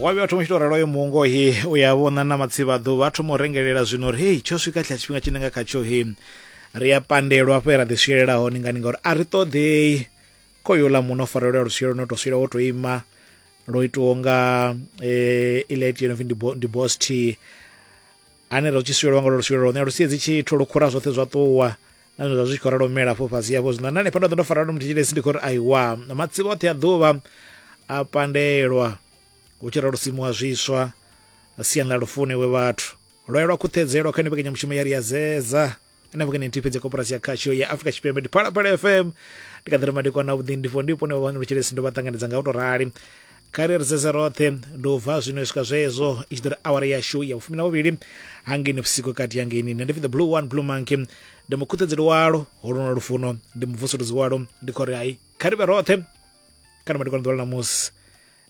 wa vhuya thoma u tshi tou ralo yo mungo he u ya vhona na matsivhaḓo vha thoma u rengelela zwino uri hei tsho swika tsha tshifhinga tshine nga khatsho he ri a pandelwa hafho ra ḓi swielela hone ngani ngauri a ri ṱoḓei khoyo ḽa muno farelo ya lusielo no to swela wo to ima lo itiwa nga eh, ile itiwa ndi bo- ndi boss t ane ro tshi swielwa ngalo luswielo lone a lu siedzi tshithu lu khura zwoṱhe zwa ṱuwa na zwine zwa zwi tshi khou ralo mela afho fhasi afho zwino na hanefha ndo ḓo ndo fara no muthetshilesi ndi khou ri aiwa matsivha oṱhe a ḓuvha a pandelwa hu tshi ralo simuwa zwiswa siani ḽa lufune we vhathu lwaye lwa khuṱhedzelwa kha ni mbekanyamushumo ya ri ya zeza na vhukene nthihi fhedzi koporasi ya khasho ya afrika tshipembe ndi phalaphala fm ndi kaḓira madekwana a vhuḓi ndifho ndipo ne vhavhangelo tshelesi ndo vha ṱanganedza nga u to rali kare ri sedza roṱhe ndi u bva zwino u swika zwezo i tshi ḓo ri awara yashu ya vhufumi na vhuvhili hangeni vhusiku kati hangeni nṋe ndi pfi the blue one blue monkey ndi mukhuṱedzeli walo holona lufuno ndi muvusuluzi walo ndi khori hai kha ri vhe roṱhe kana madekwana ḓuvha ḽa ṋamusi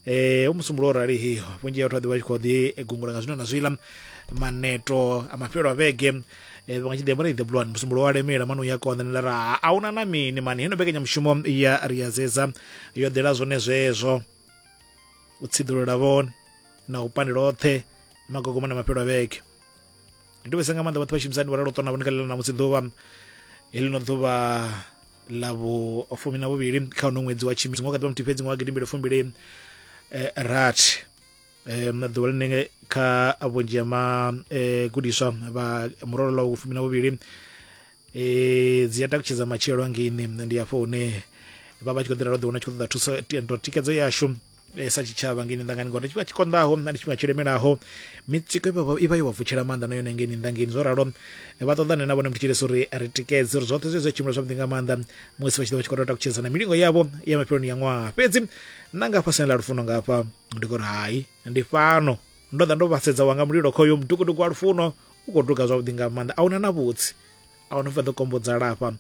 e u musumbulo o rali hi vhunzhi ha vhathu vha ḓi vha tshi khou ḓi gungula nga zwino na zwiḽa maneto a mafhelo a vhege eh, vha tshi ḓi amba ri ḓe bulwani musumbulo wa lemela mani uya konḓa ni lara a huna na mini mani heno mbekanyamushumo ya ri ya dzedza yo ḓela zwone zwezwo u tsiḓulula vhone na u pandela oṱhe magogoma na mafhelo a vhege ndi vhese nga maanḓa vhoṱhe vhashumisani vharalo ṱona vhonikalela na musi ḓuvha heḽino ḓuvha ḽa vhufumi na vhuvhili kha uno ṅwedzi wa tshimisi ngo kha ḓuvha muthihi fhedzi ngo wa gidimbili fumbili eh, rathi um ḓuvha ḽine kha vhunzhi ha magudiswa eh, vha murolo ḽa vhufumi na vhuvhili um dzi a takutshedza matshelo angeini ndi hafho hune vha vha tshi khou ḓira ro ḓiwana tshi khou ṱoḓa thuso tikedzo yashu eh, sa tshitshavha ngeni ndangani ngori ndi tshifhinga tshi konḓaho na ndi tshifhinga tshi lemelaho mitsiko i vha- i vha yo vha vutshela maanḓa na yone ngeni ndangeni zwo ralo eh, vha ṱoḓane na vhone mutshilesi uri ri tikedze uri zwoṱhe zwe zwa tshimbila zwavhuḓi nga maanḓa musi vha tshi ḓo vha tshi khou tou takutshedza na milingo yavho ya mafheloni ya ṅwaha fhedzi na nga fhasini ḽa lufuno nga hafha ndi khou ri hai ndi fhano ndo ḓa ndo vhasedza wanga mulilo khoyo mutukutuku wa lufuno u khou duga zwavhuḓi nga maanḓa a huna na vhutsi a huna vha ḓo kombodza lafha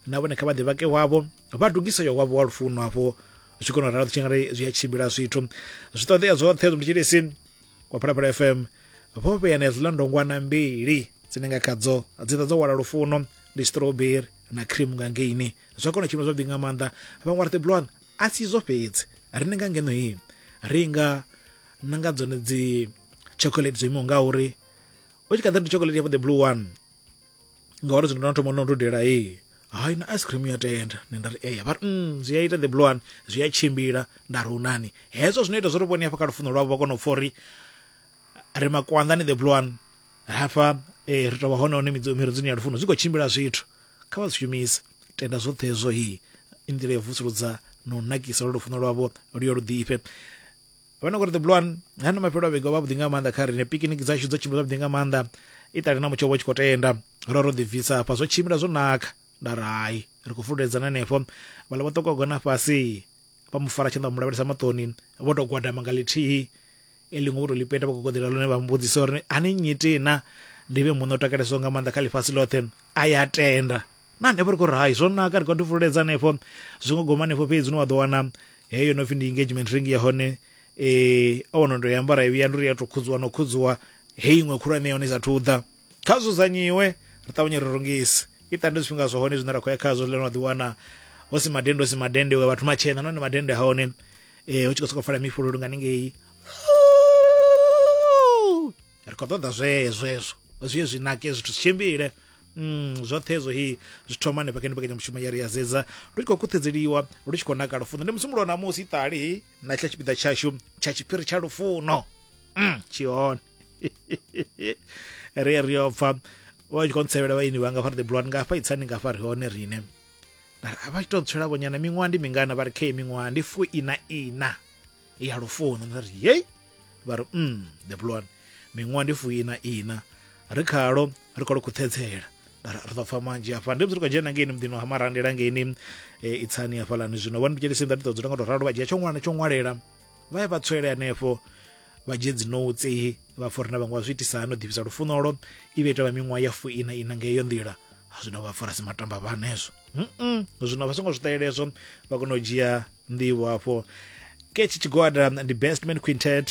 na vhone kha vha ḓi vhake wavho vha dugise yo wavho wa lufuno hafho zwi tshi kona u ralo tshi nga ri zwi a tshimbila zwithu zwi ṱoḓea zwoṱhe zwi mutshilisi wa phalaphala fm vho vhea na hedziḽa ndongwana mbili dzine nga khadzo dzi ḓa dzo wala lufuno ndi strawberry na cream nga ngeini zwa kona tshimbila zwavhuḓi nga maanḓa vhaṅwe vha ri tiblon a si izwo fhedzi ri ni nga ngeno hii ri nga na nga dzone dzi chocolate dzo imaho nga uri u tshi kha ḓa ndi chocolate ya the blue one ngauri zwino na thoma no dudela ee hayi na ice cream ya tenda nṋe nda ri eya vha ri mm, zwi a ita the blue one zwi a tshimbila nda ri unani hezwo zwino ita zwo ri vhone hafha kha lufuno lwavho vha kona u pfa uri ri makwanḓani the blue one hafha eh, ri tovha hone hone miredzoni ya lufuno zwi khou tshimbila zwithu kha vha zwi shumise tenda zwoṱhe hezwo hi i nḓila ya vusuludza na u nakisa lwa lufuno lwavho lu yo lu ḓifhe vhona ngori the blue one hani mafhelo a vhege vha vhuḓi nga maanḓa kha rine pikiniki dzashu dzo tshimbila zwavhuḓi nga maanḓa itali na mutsho vho tshi khou tenda ro ro ḓibvisa hafha zwo tshimbila zwo naka nda ri hai ri khou fululedzana henefho vhala vho ṱoka gona fhasi vha mu fara tshanḓa vha mu lavhelesa maṱoni vho tou gwadama nga ḽithihi e ḽiṅwe vho tou ḽi peta vha khou goḓela lone vha mbudzisa uri ani nyitina ndi vhe muṋe o takalesaho nga maanḓa kha ḽifhasi ḽoṱhe a ya tenda na hanefho ri khou ri hai zwo naka ri khou ḓi fululedza hanefho zwi ngo goma hanefho fhedzi ni wa ḓo wana heyo no pfhi ndi engagement ring ya hone um o wana ndo i ambara i vhuya ndi uri ya tou khudziwa no khudziwa heyi iṅwe khulwane ya hone i sathu ḓa kha dzudzanyiwe ri ṱavhanye ri rungise i ṱande zwifhinga zwa hone zwine ra khou ya khazwo zwiḽa no ḓi wana hu si madende hu si madende we vhathu matshena nahone madende ha hone um hu tshi khou sokou fala mifhululu nga ningei ri khou ṱoḓa zwezwezwo zwi ye zwi nake zwithu zwi tshimbile Mm, zwoṱhe hezwo hi zwi thoma hanefha kha mbekanyamushumo ya ri ya zedza lu tshi khou khuthedzeliwa lu tshi khou naka lufuno ndi musumbulo na musi ṱali hi na tsha tshipiḓa tshashu tsha tshiphiri tsha lufuno mm, tshihone ri ri yo pfa vha tshi khou ntsevhela vhaini vhanga fha ri the blood ngafha itsani ngafha ri hone rine a vha tshi tou tswela vhonyana miṅwaha ndi mingana vha ri khe miṅwaha ndi fu ina ina ya lufuno nda ri yei vha ri mm the blonde miṅwaha ndi fuina ina ri khalo ri khou khuṱhedzela ri ḓo pfa manzhi hafha ndi bziri khou dzhena ngeini muḓini wa hamarandela ngeini e, itsani hafhalani zwino vha ndipjelisi nda ndi ḓo dzula nga to ralo vha dzhia tsho ṅwana tsho ṅwalela vha ya vha tswele hanefho vha dzhie dzinotsi vha pfa uri na vhaṅwe vha zwi itisa hani u ḓivhisa lufunolo i vha ita vha miṅwaha ya fuina ina nga iyo nḓila zwino vha fara si matamba vha hanezwo zwino vha songo zwi ṱahelezwo vha kona u dzhia nḓivho hafho ketshi tshigwada ndi best man quintet